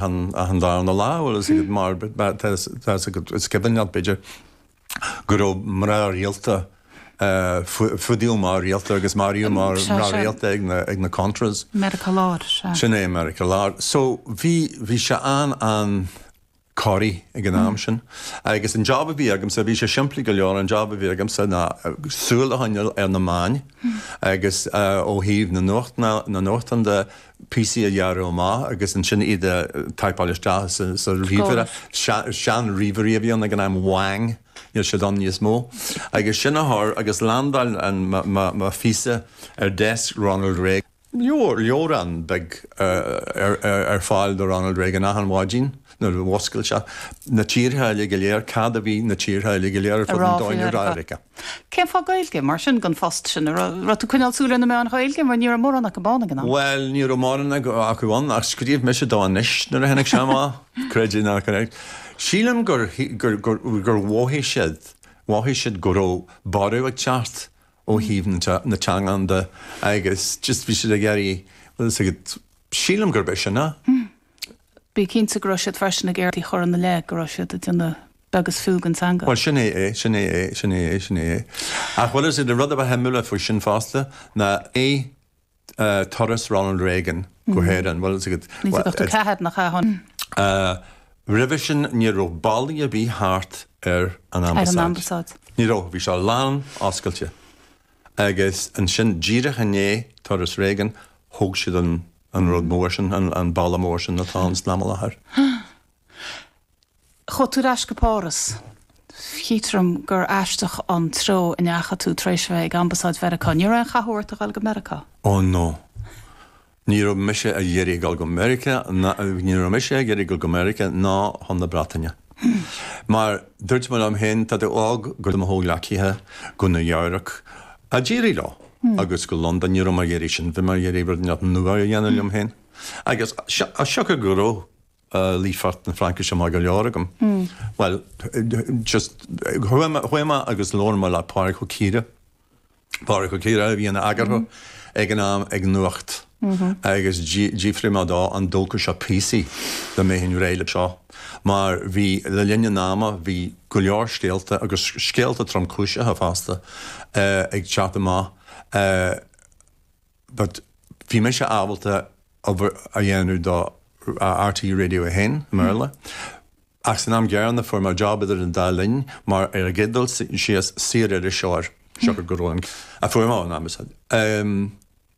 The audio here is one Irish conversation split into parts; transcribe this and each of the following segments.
an darna lá, bhuel, is ag an mbarr, tá's agat, is cuimhneach leat, b'fhéidir, go raibh mná rialta, fuadaíodh mná rialta agus maraíodh mná rialta ag na Contras. Meiriceá Láir, sea. Sin é, Meiriceá Láir. So, bhí, bhí sé an-, an-chorraithe ag an am sin agus an jab a bhí agamsa, bhí sé simplí go leor, an jab a bhí agamsa ná súil a choinneáil ar na meáin agus ó thaobh na nuacht, na nuachtán de, píosaí a ghearradh amach agus ansin iad a thaipáil isteach sa ríomhaire, seanríomhairí a bhí ann ag an am, Wang, níl siad ann níos mó, agus sin a chur agus landáil mo phíosa ar desk Ronald Reagan. Leabhar, leabhrán beag ar fáil do Ronald Reagan achan mhaidin nuair a mhúscail sé, na tíortha uilig go léir, cad a bhí na tíortha uilig go léir ar fud an domhain ag rá faoi. Cén fáth Gaeilge, mar sin, don phost sin? An raibh tú ag coinneáil súil ar na meáin Ghaeilge, mar ní raibh mórán acu ann ag an am? Bhuel, ní raibh mórán acu ann, ach scríobh mise do Anois nuair a tháinig sé amach, creid é nó ná creid. Sílim gur mhothaigh siad, mhothaigh siad go raibh borradh ag teacht ó thaobh na teangan de agus just bhí siad ag iarraidh, sílim gurb é sin é. Bí cinnte go raibh siad freisin ag iarraidh a chur ina leith go raibh siad ag déanamh beag is fiú den teanga. Bhuel, sin é é, sin é é, sin é é, sin é é. Ach, bhuel, is é an rud a ba shuimiúla faoi sin fosta ná turas Ronald Reagan go hÉirinn. Bhuel, is é go. 1984, nach ea? Tháinig. Roimhe sin, ní raibh ballaí ar bith thart ar an ambasáid. Ar an ambasáid. Ní raibh, bhí sé lán oscailte. Agus ansin, díreach i ndiaidh turas Reagan, thóg siad an. an rud mór sin, an balla mór sin atá ann san am i láthair. Chuaigh tú ar ais go Páras. Chítear dom gur aisteach an treo a ndeachaigh tú tar éis a bheith ag Ambasáid Mheiriceá. Ní raibh aon chathú ort a dhul go Meiriceá? Ó no. Ní raibh mise ag iarraidh a dhul go Meiriceá, ní raibh mise ag iarraidh a dhul go Meiriceá ná chun na Breataine. Mar dúirt mé liom féin, tá tú óg, chuaigh mo chomhghleacaithe go Nua Eabhrac d'éirigh leo. agus go Londain. Ní raibh mé ag iarraidh sin, bhí mé ag iarraidh rud inteacht nua a dhéanamh liom féin. Agus as siocair go raibh líofacht na Fraincise maith go leor agam, bhuel, just chuaigh mé agus labhair mé le Pádhraic Ó Ciardha, Pádhraic Ó Ciardha a bhí ina eagarthóir ag an am ag Nuacht. agus d'fhiafraigh mé dó an dtógfadh sé píosaí de mé féin réidh le seo, mar bhí, le linn an ama, bhí go leor scéalta, agus scéalta tromchúiseacha fosta, ag teacht amach, but bhí mise ábalta obair a dhéanamh do RTÉ Radio 1, i mBéarla, ach san am céanna fuair mé job idir an dá linn mar airgead dul síos, saoririseoir, siocair go raibh an, a fuair mé ón Ambasáid.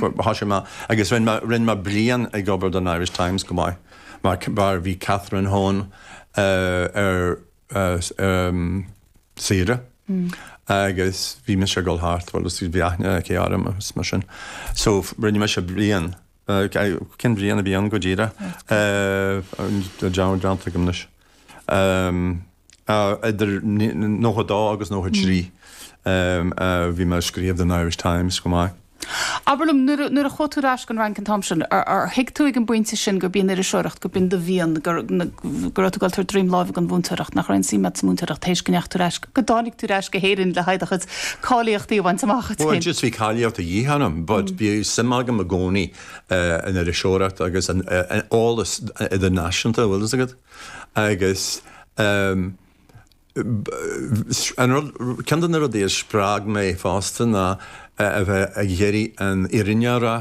Bhí sé maith agus rinne mé, rinne mé bliain ag obair don Irish Times chomh maith mar mar bhí Catherine Hone ar saoire agus bhí mise ag dul thart, bhuel is bhí aithne aici orm agus mar sin. So rinne mise bliain, cén bhliain a bhí ann go díreach? Tá an dream déanta agam anois. Ehm, eh, idir nócha dó agus nócha trí, ehm, eh, bhí mé ag scríobh don Irish Times chomh maith. Abair liom, nuair a, nuair a chuaigh tú ar ais gon Fhrainc an t-am sin, ar, ar thuig tú ag an bpointe sin gurb í an iriseoireacht, gurb in do mhian, gur, na, go raibh tú ag dul tabhairt droim láimhe gon mhúinteoireacht, nach raibh aon suim a'd sa múinteoireacht tar éis go ndeachaigh tú ar ais, go dtáinig tú ar ais go hÉirinn le haghaidh do chuid cáilíochtaí a bhaint amach? Bhuel, just bhí cáilíocht de dhíth orm but bhí suim agam i gcónaí. an iriseoireacht agus an eolas idirnáisiúnta an bhfuil fhios agat agus ceann de na rudaí a spreag mé fosta ná a bheith ag iarraidh an fhírinne a rá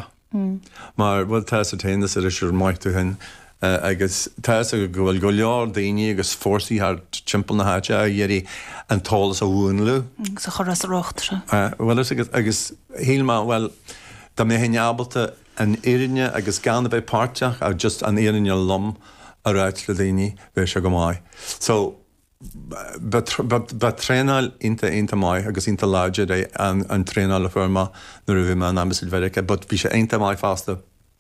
mar bhuel, tá's a'd féin mar is iriseoir maith tú féin, agus tá fhios agam go bhfuil go leor daoine agus fórsaí thart timpeall na háite ag iarraidh an t-eolas a mhúnlú. agus a chur as a riocht, sea. Bhuel, sea agus, agus shíl mé, bhuel, dá mbeinn ábalta an fhírinne, agus gan a bheith páirteach, ach just an fhírinne lom a ráit le daoine, bheadh sé go maith. So, ba thraenáil iontach, iontach maith agus iontach láidir é an traenáil a fuair mé nuair a bhí mé in Ambasáid Mheiriceá, but bhí sé iontach maith fosta,